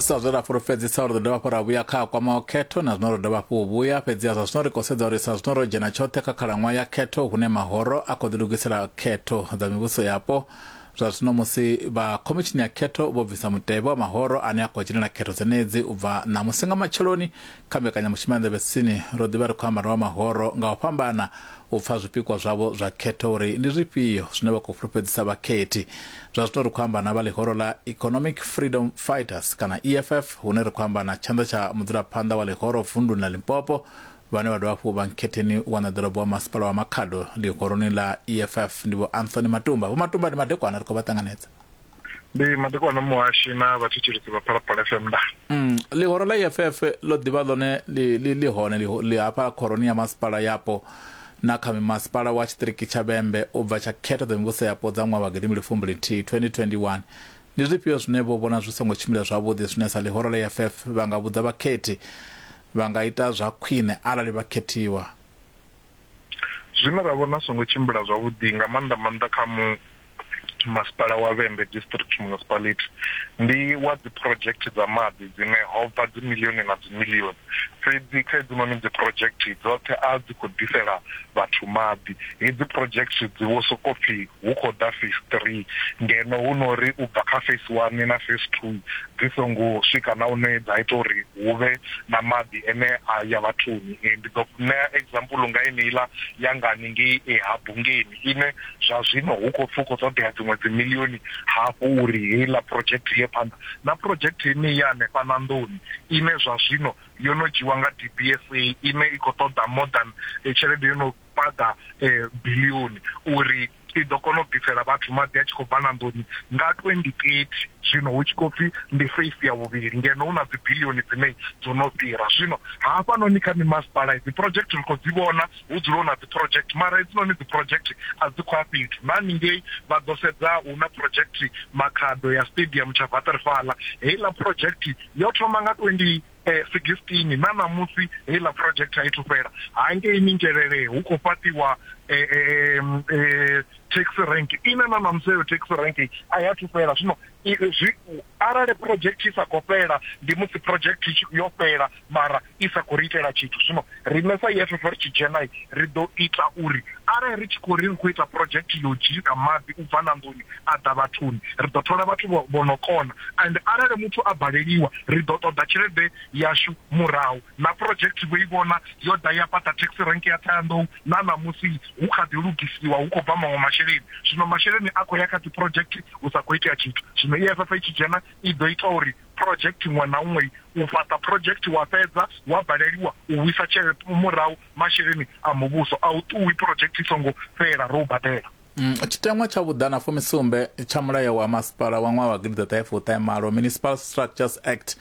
sa zwe ra fhulufhedzisa uri ḓo dovha hafhu ra vhuya kha kwama o khetho na zwino ro dovha hafhu u vhuya fhedziha zwa zwino ri khou sedza uri sa zwino ro dzhena tshoṱhe kha khalaṅwaha ya khetho hune mahoro a khou ḓilugisela khetho dza mivhuso yapo zwa zwino musi vha khomitshini ya khetho vho bvisa mutevhe wa mahoro ane a khou dzhenela khetho dzenedzi u bva ṋamusi nga matsheloni Kha mbekanyamushumo ya Nḓevhetsini, ro ḓi vha ri khou amba na vha mahoro nga u fhambana u pfa zwipikwa zwavho zwa khetho uri ndi zwifhio zwine vha khou fhulufhedzisa vhakhethi. Zwa zwino ri khou amba na vha ḽihoro ḽa Economic Freedom Fighters kana EFF hune ri khou amba na tshanḓa tsha mudzulaphanḓa wa ḽihoro vunduni ḽa Limpopo vhane vha dovha hafhu vha nkhetheni wa ṋaḓorobo wa masipala wa Makhado ḽihoroni ḽa EFF ndi Vho Anthony Matumba. Vho Matumba ndi madekwana ri khou vha ṱanganedza. ndi madekwana muhashi na vhathetshelesi vha phalaphala fm nda mm, ḽihoro ḽa eff ḽo ḓivha ḽone ḽi hone ḽi hafha khoroni ya masipala yapo na kha mimasipala wa tshiṱiriki tsha vhembe u bva tsha khetho dza mivhuso yapo dza ṅwaha wa gidimbili fumbili nthihi 2021 ndi zwifhio zwine vho vhona zwi songo tshimbila zwavhuḓi zwine sa ḽihoro ḽa eff vha nga vhudza vhakhethi vha nga ita zwa khwine arali vha khethiwa Zwine ra vhona zwi songo tshimbila zwavhuḓi nga maanḓa maanḓa kha mu masipala wa Vhembe District Municipality ndi wa dzi project dza maḓi dzine ho bva dzi miḽioni na dzi miḽioni fhedzi kha hedzinoni dzi project dzoṱhe a dzi khou ḓisela vhathu maḓi. Hedzi project dzi vho sokou pfhi hu khou ḓa Phase Three, ngeno hu no ri u bva kha Phase One na Phase Two dzi songo swika na hune dza ita uri hu vhe na maḓi ane a ya vhathuni. Ndi ḓo ṋea example nga yeneiḽa ya nga haningei ha Bungeni ine zwa zwino hu khou pfi hu khou ṱoḓea dziṅwe dzi miḽioni hafhu uri heiḽa project i ye phanḓa, na project yeneyi ya hanefha na nḓuni ine zwa zwino yo no dzhiiwa nga DBSA ine i khou ṱoḓa more than tshelede yo no paḓa bilioni uri i ḓo kona u ḓisela vhathu maḓi a tshi khou bva na nḓuni nga 2030 zwino hu tshi khou pfi ndi face ya vhuvhili ngeno hu na dzi bilioni dzine dzo no fhira zwino hafhanoni kha mimasipala dzi project ri khou dzi vhona hu dzula hu na dzi project mara hedzinoni dzi project a dzi khou a fhethu na ningei vha ḓo sedza hu na project makhado ya stadium tsha vaterfala heiḽa project yo thoma nga 20 eh, 16 na ṋamusi heiḽa project a i thu fhela hangei mingelele hu khou fhaṱiwa eh, eh, eh, taxi rank ine na ṋamusi heyo taxi rank a ya thu fhela zwino arali project i sa khou fhela ndi musi project yo fhela mara i sa khou ri itela tshithu zwino Riṋe sa EFF ri tshi dzhena, ri ḓo ita uri arali ri tshi khou ri ri khou ita project ya u dzhisa maḓi u bva ṋanḓoni a ḓa vhathuni, ri ḓo thola vhathu vho vho no kona and arali muthu a baleliwa ri ḓo ṱoḓa tshelede yashu murahu. Na project vho i vhona yo ḓa ya fhaṱa taxi rank ya Ṱhohoyanḓou na ṋamusi hu kha ḓi lugisiwa hu khou bva maṅwe masheleni. Zwino masheleni a khou ya kha dzi project hu sa khou itea tshithu. Zwino EFF i tshi dzhena i ḓo ita uri Phurojekthi iṅwe na iṅwe u fhaṱa phurojekthi wa fhedza wa baleliwa u vhuisa tshelede murahu, masheleni a muvhuso a u ṱuwi phurojekthi i songo fhela ro u badela. Tshiteṅwa tsha vhuḓana fumisumbe tsha Mulayo wa Masipala wa ṅwaha wa gidiḓaṱahefuṱahemalo, Municipal Structures Act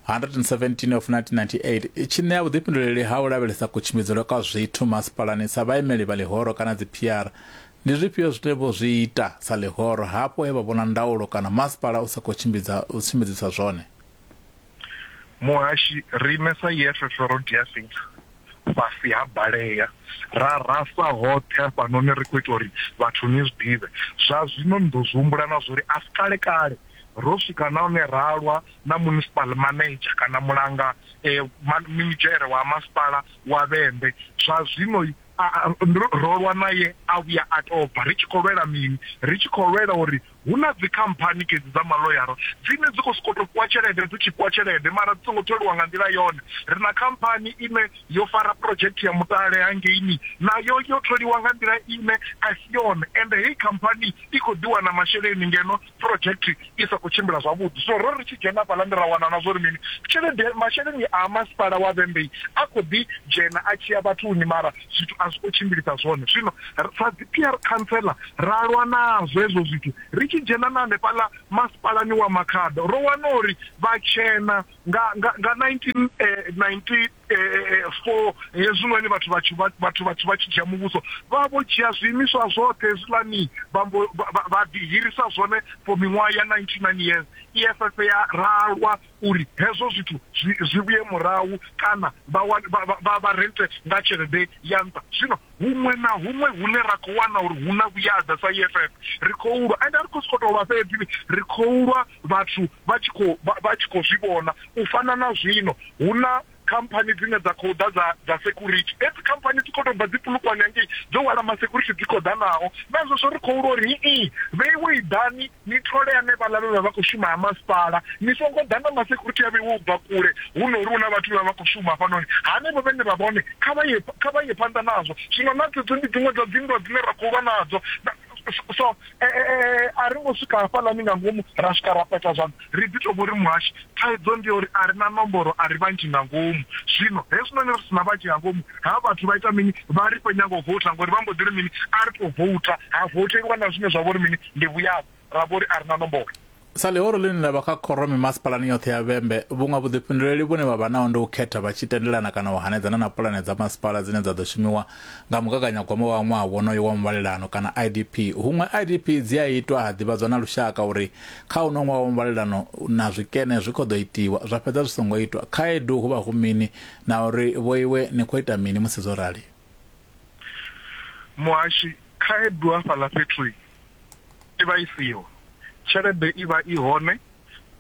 117 of 1998, tshi ṋea vhuḓifhinduleli ha u lavhelesa kutshimbidzelwe kwa zwithu masipalani sa vhaimeli vha ḽihoro kana dziphiara Ndi zwifhio zwine vho zwi ita sa ḽihoro hafho he vha vhona ndaulo kana masipala u sa khou tshimbidza u tshimbidzisa zwone? Muhashi, Riṋe sa EFFF ro dia fhethu fhasi ha balea ra rasa hoṱhe hafhanoni ri khou ita uri vhathu ni zwi ḓivhe. Zwa zwino ni ḓo zwi humbula na zwa uri a si kale-kale ro swika na hune ra lwa na munisipal manedzha kana mulanga minidzhere wa masipala wa Vhembe. Zwa zwino ro lwa naye a vhuya a tobva ri tshi khou lwela mini ri tshi khou lwela uri hu na dzi khamphani kedzi dza maloyara dzine dzi khou sokou tou fhiwa tshelede dzi tshi fhiwa tshelede mara dzi songo tholiwa nga nḓila yone ri na khamphani ine yo fara project ya mutale hangeini nayo yo tholiwa nga nḓila ine a si yone ende heyi khamphani i khou ḓiwana masheleni ngeno Phurojekthi i sa khou tshimbila zwavhuḓi. Zwino ro ri tshi dzhena hafhaḽani ra wana na zwa uri mini, tshelede, masheleni a masipala wa Vhembei a khou ḓi dzhena a tshi ya vhathuni mara zwithu a zwi khou tshimbilisa zwone. Zwino sa dzi PR Khantsela ra lwa nazwo hezwo zwithu. Ri tshi dzhena na hanefhaḽa masipalani wa Makhado ro wana uri vhatshena nga, nga, nga 19, eh, 19, e, e, e, fo hezwinoni vhathu vhathu vhathu vhathu vha tshi dzhia muvhuso vha vho dzhia zwiimiswa zwoṱhe hezwiḽani vha ḓihirisa zwone for miṅwaha ya 99 years eff ya ralwa uri hezwo zwithu zwi vhuye murahu kana vha rente nga tshelede ya nṱha zwino Huṅwe na huṅwe hune ra khou wana uri hu na vhuyaḓa sa EFF, ri khou lwa. Ende a ri khou sokou tou lwa fhedzi, ri khou lwa vhathu vha tshi khou vha tshi khou zwi vhona. U fana na zwino, hu na khamphani dzine dza khou ḓa dza dza security. Hedzi khamphani dzi khou tou bva dzi Polokwane hangei, dzo hwala ma security dzi khou ḓa nao. Naa zwezwo ri khou lwa uri, Hii, vheiwei ḓani. Ni thole hanevhaḽa vhe vha vha khou shuma ha masipala. Ni songo ḓa na masekhurithi a vheiwaho u bva kule. Hu no ri hu na vhathu vhe vha vha khou shuma hafhanoni. Hanevho vhe ni vha vhone, kha vha ye, kha vha ye phanḓa nazwo. Zwino na dzedzo ndi dziṅwe dza dzinndwa dzine ra khou lwa nadzo. Na, so, e, e, e, a ri ngo swika hafhaḽani nga ngomu ra swika ra peta zwanḓa. Ri ḓi tou vho ri muhashi Thaidzo ndi ya uri a ri na nomboro, a ri vhanzhi nga ngomu. Zwino hezwinoni ri si na vhanzhi nga ngomu, ha vhathu vha ita mini? Vha ri khou nyanga u voutha ngori vha mbo ḓi ri mini? A ri tou voutha. Ha voutheliwa na zwine zwa vha uri mini? Ndi vhuyavho. Ra vho ri a ri na nomboro. Sa ḽihoro ḽine ḽa vha kha khoro mimasipalani yoṱhe ya Vhembe, vhuṅwe vhuḓifhinduleli vhune vha vha naho ndi u khetha vha tshi tendelana kana u hanedzana na pulane dza masipala dzine dza ḓo shumiwa nga mugaganyagwama wa ṅwaha wonoyo wa muvhalelano kana IDP. Huṅwe IDP dzi a itwa ha ḓivhadzwa na lushaka uri Kha uno ṅwaha wa muvhalelano na zwikene zwi khou ḓo itiwa zwa fhedza zwi songo itwa, khaedu hu vha hu mini na uri vhoiwe ni khou ita mini musi zwo rali? Muhashi, Khaedu hafhaḽa fhethu i vha i siho, tshelede i vha i hone,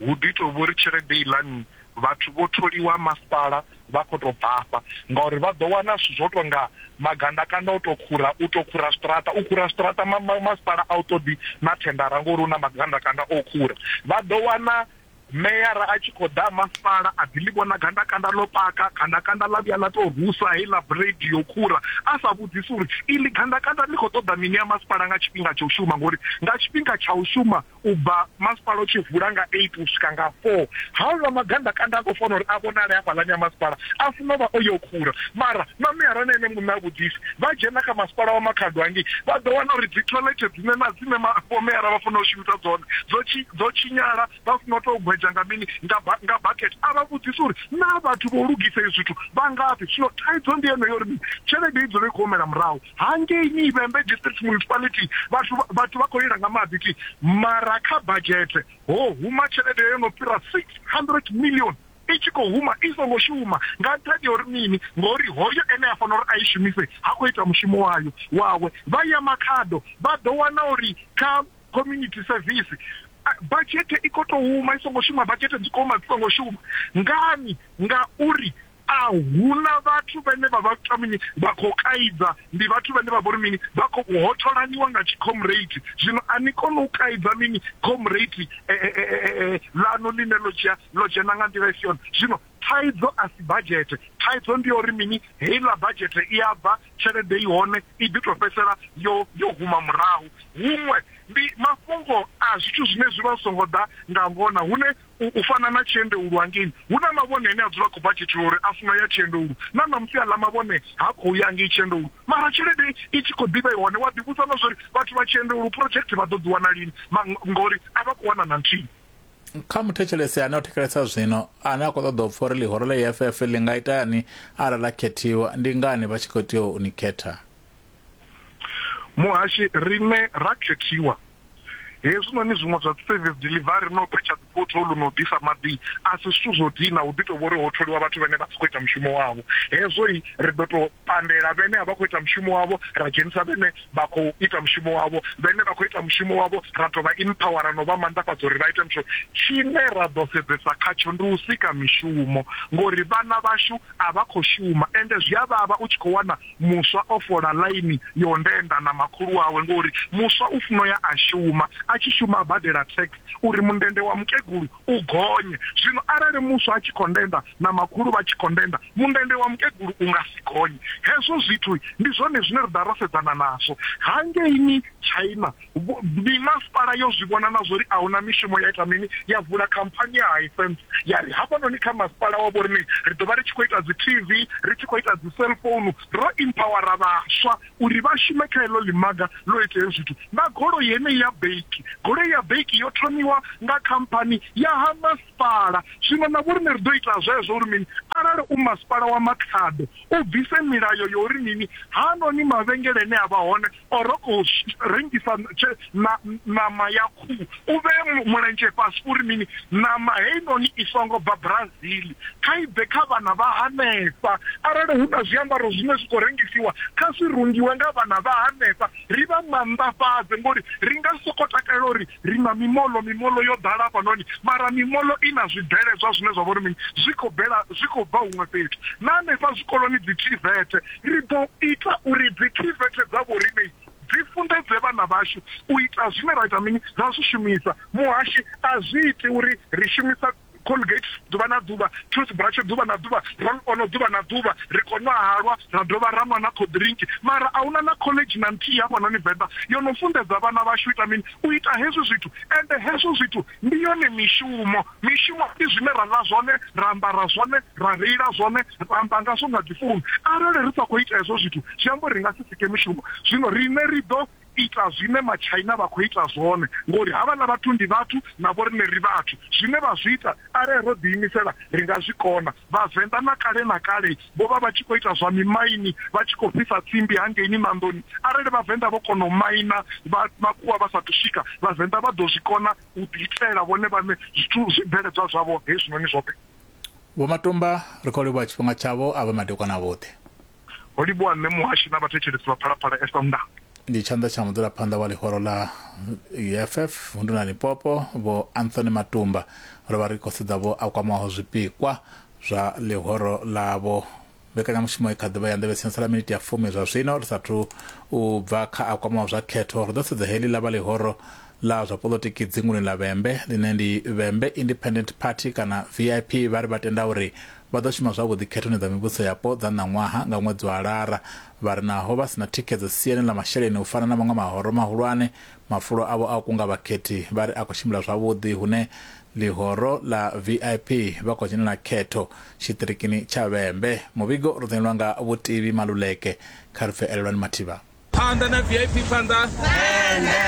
hu ḓi tou vha uri tshelede iḽani vhathu vho tholiwa masipala vha khou tou bvafha ngauri vha ḓo wana zwithu zwo tou nga magandakanda o tou khura, u tou khura zwiṱaraṱa, u khura zwiṱaraṱa ma, ma, masipala a u ṱoḓi na thendara ngori hu na magandakanda o khura. Vha ḓo wana meyara a tshi khou ḓa masipala a ḓi ḽi vhona gandakanda ḽo paka, gandakanda ḽa vhuya ḽa tou rusa heiḽa bureidi yo khura, a sa vhudzisi uri iḽi gandakanda ḽi khou ṱoḓa mini ya masipala nga tshifhinga tsha u shuma ngori nga tshifhinga tsha u shuma U bva masipala u tshi vula nga 8 u swika nga 4, haaḽa magandakanda a khou fanela uri a vhonale hafhaḽani ha masipala a funa u vha o yo khura. Mara mameara na ene muṋe ha vhudzisi. Vha dzhena kha masipala wa Makhado hangei vha ḓo wana uri dzithoḽethe dzine na dzine ma, vhomeara vha fanela u shumisa dzone dzo tshi, dzo tshinyala, vha funa u tou gwedzha nga mini, nga ba, nga bakete. A vha vhudzisi uri naa vhathu vho lugisa izwi zwithu vha ngafhi. Zwino thaidzo ndi yeneyo uri mini? Tshelede i dzula i khou humela murahu. hangei ni Ivhembe District Municipality vhathu vhathu vha khou lila nga maḓi thi mara kha budget ho huma tshelede yo no fhira 600 million i tshi khou huma i songo shuma nga nṱhani ya uri mini ngori hoyo ene a fanela uri a i shumise ha khou ita mushumo wayo wawe vha ya makhado vha ḓo wana uri kha community service badzhete i khou tou huma i songo shuma badzhete dzi khou huma dzi songo shuma ngani ngauri A hu na vhathu vhane vha vha kha mini, vha khou kaidza. Ndi vhathu vhane vha vha uri mini, vha khou hotholaniwa nga tshikhomreithi. Zwino a ni koni u kaidza mini khomreithi ḽaṋu ḽine ḽo dzhia, ḽo dzhena nga nḓila i si yone. Zwino thaidzo a si badzhethe. Thaidzo ndi ya uri mini, heiḽa badzhethe i a bva, tshelede i hone, i ḓi tou fhedzisela yo, yo huma murahu. Huṅwe ndi mafhungo a zwithu zwine zwi vha zwi songo ḓa nga ngona, hune U, u fana na tshiendeulu hangei, hu na mavhone ane a dzula a khou bva Tshitirori a funa u ya tshiendeulu. Na ṋamusi aḽa mavhone ha khou ya ngei tshiendeulu, mara tshelede i tshi khou ḓi vha i hone. Wa ḓivhudza na zwa uri vhathu vha tshiendeulu project vha ḓo dzi wana lini, ma, ngauri a vha khou wana na nthihi. Kha muthetshelesi ane o thetshelesa zwino, ane a khou ṱoḓa u pfa uri ḽihoro ḽa EFF ḽi nga itani arali ḽa khethiwa, ndi ngani vha tshi khou tea u ni khetha? muhashi rine ra khethiwa hezwinoni zwiṅwe zwa service delivery no phetsha dzipotholu no ḓisa maḓi a si zwithu zwo dina hu ḓi to vhori ho tholiwa vhathu vhane vha si khou ita mushumo wavho hezwo i ri ḓo to pandela vhene a vha khou ita mushumo wavho ra dzhenisa vhene vha khou ita mushumo wavho vhene vha khou ita mushumo wavho ra to vha empower no vha manḓafhadza uri vha ite mushumo tshine ra ḓo sedzesa khatsho ndi u sika mishumo ngori vhana vhashu a vha khou shuma, ende zwi a vhavha u tshi khou wana muswa o fola ḽaini ya u ndenda na makhulu wawe ngauri muswa u funa u ya a shuma, a tshi shuma a badela tax uri mundende wa mukegulu u gonye. Zwino arali muswa a tshi khou ndenda na makhulu vha tshi khou ndenda, mundende wa mukegulu u nga si gonye. Hezwo zwithu ndi zwone zwine ra ḓa ra sedzana nazwo hangeini China. Mimasipala yo zwi vhona na zwa uri a hu na mishumo ya ita mini? Ya vula khamphani ya Hisense ya ri hafhanoni kha masipala wa vhoriṋe ri ḓo vha ri tshi khou ita dzi-TV, ri tshi khou ita dzi-cellphone. Ro empower-a vhaswa uri vha shume kha heḽo ḽimaga ḽo ita hezwo zwithu. Na goloi heneyi ya baki, goloi ya baki yo thomiwa nga khamphani ya ha masipala. Zwino na vhoriṋe ri ḓo ita zwezwo uri mini? Arali u masipala wa Makhado u bvise milayo ya uri mini, haanoni mavhengele ane a vha hone or u rengisa ṋama ya khuhu u vhee mulenzhe fhasi uri mini ṋama heinoni i songo bva brazil kha i bve kha vhana vha hanefha arali hu na zwiambaro zwine zwi khou rengisiwa kha zwi rungiwe nga vhana vha hanefha ri vha manḓafhadze ngori ri nga soko takalela uri Ri na mimoḽo, mimoḽo yo ḓala hafhanoni, mara mimoḽo i na zwibveledzwa zwine zwa vha uri mini? Zwi khou bvela, zwi khou bva huṅwe fhethu. Na hanefha zwikoloni, dzithivethe, ri ḓo ita uri dzithivethe dza vhoriṋe dzi funḓedze vhana vhashu u ita zwine ra ita mini? Ra zwi shumisa. Muhashi, a zwi iti uri ri shumisa. Colgate ḓuvha na ḓuvha, toothbrush ḓuvha na ḓuvha, roll on ḓuvha na ḓuvha, ri khou nwa halwa ra dovha ra nwa na cold drink. Mara a hu na na khoḽedzhi na nthihi hafhanoni Venḓa yo no funḓedza vhana vhashu ita mini? U ita hezwi zwithu. Ende hezwo zwithu ndi yone mishumo. Mishumo ndi zwine ra ḽa zwone, ra ambara zwone, ra reila zwone, ra amba ngazwo nga dzifounu. Arali ri sa khou ita hezwo zwithu zwi amba uri ri nga si sike mishumo. Zwino riṋe ri ḓo. ita zwine matshaina vha khou ita zwone ngori havhaḽa vhathu ndi vhathu na vhoriṋe ri vhathu, zwine vha zwi ita arali ro ḓiimisela ri nga zwi kona. Vhavenḓa na kale na kale vho vha vha tshi khou ita zwa mimaini vha tshi khou fhisa tsimbi hangeini Manḓoni. Arali Vhavenḓa vho kona u maina vha makhuwa vha sathu swika, Vhavenḓa vha ḓo zwi kona u ḓi itela vhone vhaṋe zwithu zwibveledzwa zwavho hezwinoni zwoṱhe. Vho Matomba ri khou livhuwa tshifhinga tshavho a vha madekwana a vhoṱhe. Ho livhuwa Mme Muhashi na vhathetshelesi vha Phalaphala FM na. Ndi tshanḓa tsha mudzulaphanḓa wa ḽihoro ḽa UFF vundu na Limpopo vho Anthony Matumba ro vha ri khou sedza vho a kwamaho zwipikwa zwa ḽihoro ḽavho. Mbekanyamushumo i kha ḓivha ya nḓevhe sensa ḽa miniti ya fumi zwa zwino ri sathu u bva kha a kwamaho zwa khetho ri ḓo sedza heḽi ḽa vha ḽihoro ḽa zwa polotiki dzinguni ḽa Vhembe ḽine ndi Vhembe Independent Party kana VIP vha ri vha tenda uri Vha ḓo shuma zwavhuḓi khethoni dza mivhusoyapo dza ṋaṅwaha nga ṅwedzi wa Lara. Vha ri naho vha si na thikhedzo siani ḽa masheleni u fana na maṅwe mahoro mahulwane, mafulo avho a u kunga vhakhethi vha ri a khou tshimbila zwavhuḓi hune ḽihoro ḽa vip vha khou dzhenela khetho tshiṱirikini tsha Vhembe. Muvhigo u dzudzanyelwa nga Vhutivi Maluleke. Kha ri pfe Elelwani Mathiba. Phanḓa na vip phanḓa.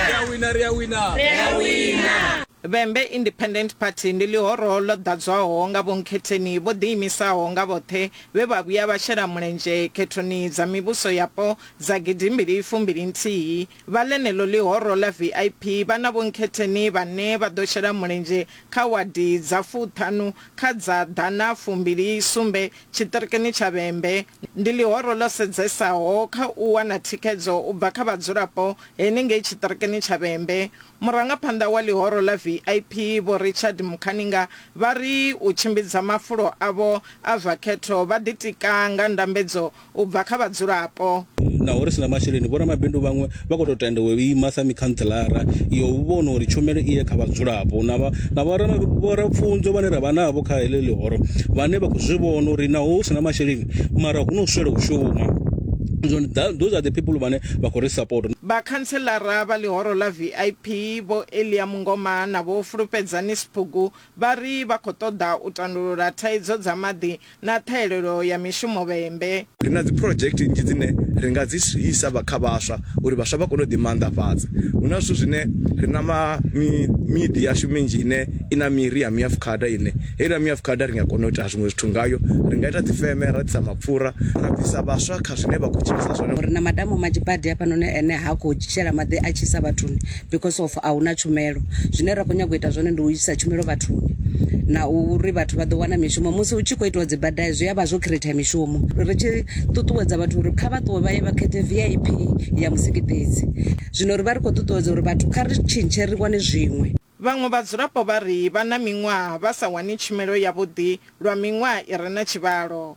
Ri a wina ri a wina. Vhembe Independent Party ndi ḽihoro ḽo ḓadzwaho nga vhonkhetheni vho ḓiimisaho nga vhoṱhe vhe vha vhuya vha shela mulenzhe khethoni dza mivhuso yapo dza gidimbili fumbili nthihi. Vha ḽeneḽo ḽihoro ḽa vip vha na vhonkhetheni vhane vha ḓo shela mulenzhe kha wadi dza fuṱhanu kha dza ḓana fumbili sumbe tshiṱirikini tsha Vhembe. Ndi ḽihoro ḽo sedzesaho kha u wana thikhedzo u bva kha vhadzulapo henengei tshiṱirikini tsha Vhembe. Murangaphanḓa wa ḽihoro ḽa VIP, Vho Richard Mukhaninga, vha ri u tshimbidza mafulo avho a zwa khetho vha ḓitika nga ndambedzo u bva kha vhadzulapo. Naho ri si na masheleni, vhoramabindu vhaṅwe Vha khou tou tenda u ima sa mikhantselara ya u vhona uri tshumelo i ye kha vhadzulapo na vha na vho ra vho ra pfunzo vhane ra vha navho kha heḽi ḽihoro vhane vha khou zwi vhona uri naho hu si na masheleni mara hu no swela u shuma. Zwino ndi ḓa those are the people vhane vha khou ri support. Vhakhantselara vha ḽihoro ḽa VIP Vho Elia Mungoma na Vho Fulufhedzani Sbugu Vha ri vha khou ṱoḓa u tandulula thaidzo dza maḓi na ṱhahelelo ya mishumo vhembe. Ri na dziphurodzhekithe nnzhi dzine ri nga dzi isa vha kha vhaswa uri vhaswa vha kone u ḓimaanḓafhadza. Hu na zwithu zwine ri na ma, mi, miḓi yashu minzhi ine i na miri ya miafukhada ine heiḽa miafukhada ri nga kona u ita zwiṅwe zwithu ngayo. Ri nga ita dzifeme ra ḓisa mapfura ra bvisa vhaswa kha zwine vha khou tshilisa zwone. Ri na madamu manzhi badi hafhanoni ane ha khou shela maḓi a tshisa vhathuni. because of a huna tshumelo zwine ra kho nyago ita zwone ndi u isa tshumelo vhathuni na uri vhathu vha ḓo wana mishumo musi hu tshi khou itiwa dzibada zwi a vha zwo create mishumo ri tshi ṱuṱuwedza vhathu uri kha vha ṱuwe vha ye vha khethe vip ya musiki fhedzi zwino ri vha ri khou ṱuṱuwedza uri vhathu kha ri tshintshe ri wane zwiṅwe Vhaṅwe vhadzulapo vha ri vha na miṅwaha vha sa wani tshumelo yavhuḓi lwa miṅwaha i re na tshivhalo.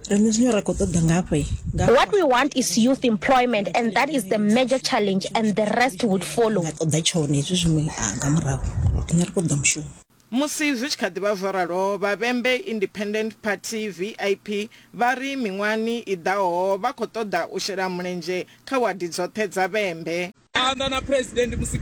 Riṋe zwine ra khou ṱoḓa ngafhi nga. What we want is youth employment and that is the major challenge and the rest would follow. Nga ṱoḓa tshone hezwi zwiṅwe nga murahu. Riṋe ri khou ṱoḓa mushumo. Musi zwi tshi kha ḓi vha zwo ralo, vha Vhembe Independent Party, vip, vha ri miṅwahani i ḓaho vha khou ṱoḓa u shela mulenzhe kha wadi dzoṱhe dza Vhembe. Phanḓa na Phresidennde musi.